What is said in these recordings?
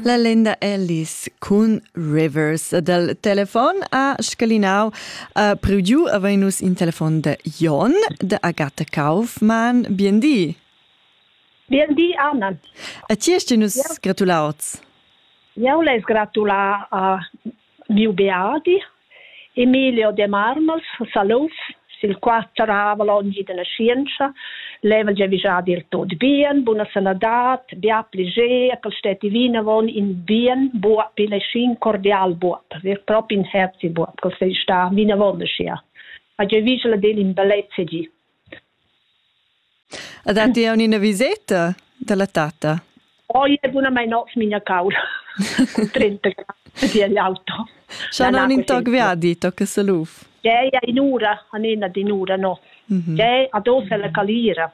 La lenda Alice cun Rivers dal telefon a scalinau a priu avegnus in telefon de Jon de Agatha Kaufmann. Bien di. Bien di, Anna. A ti hast nus gratulauts. Eu l'he gratulà a Miu beadi Emilio Demarmels Salouf sil qual serravel onn dalla schientscha level gia vischadi tot bien, buna sanadad, bia pliger, ch'el stetti vinavon in bien buob, igl ei schi in cordial buob, ver propi in herzi buob ch'el sei stat vinavon aschia. Ha gieu vigel ad el in bellezia gi. E datti aunc ina viseta dalla tatta? Oi, oh, bunamain notg migna caula. Cu 30 grad di auto. Scha non in toc viadi, tocca saluf. Gea, in'ura, anena d'in'ura, no. Gea, ad ossa la calira.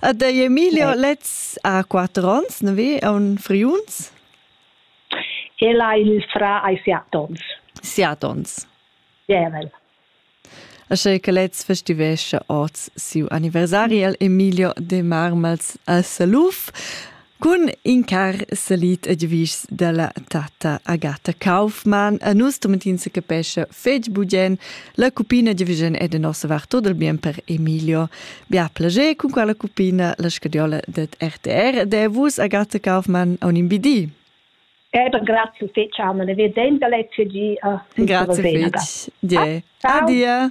A dei Emilio lez a quattro ons, ne vi, a un friuns? El ha il fra ai siat ons. Siat ons. Jävel. Asche che lez festivescha oz siu anniversari al Emilio de Marmals a Saluf. Cun in car salit e giavischs dalla tata Agata Kaufmann a nus tomentin se capescha fetg bugien la cupina giavigen e de nossa var tot il bien per Emilio. Bia plager cun quella cupina la scadiola det RTR de vus Agata Kaufmann a un imbidi. Eder grazie fetg Anna, ne vedem da letg gi. Grazie fetg. Die. Adia.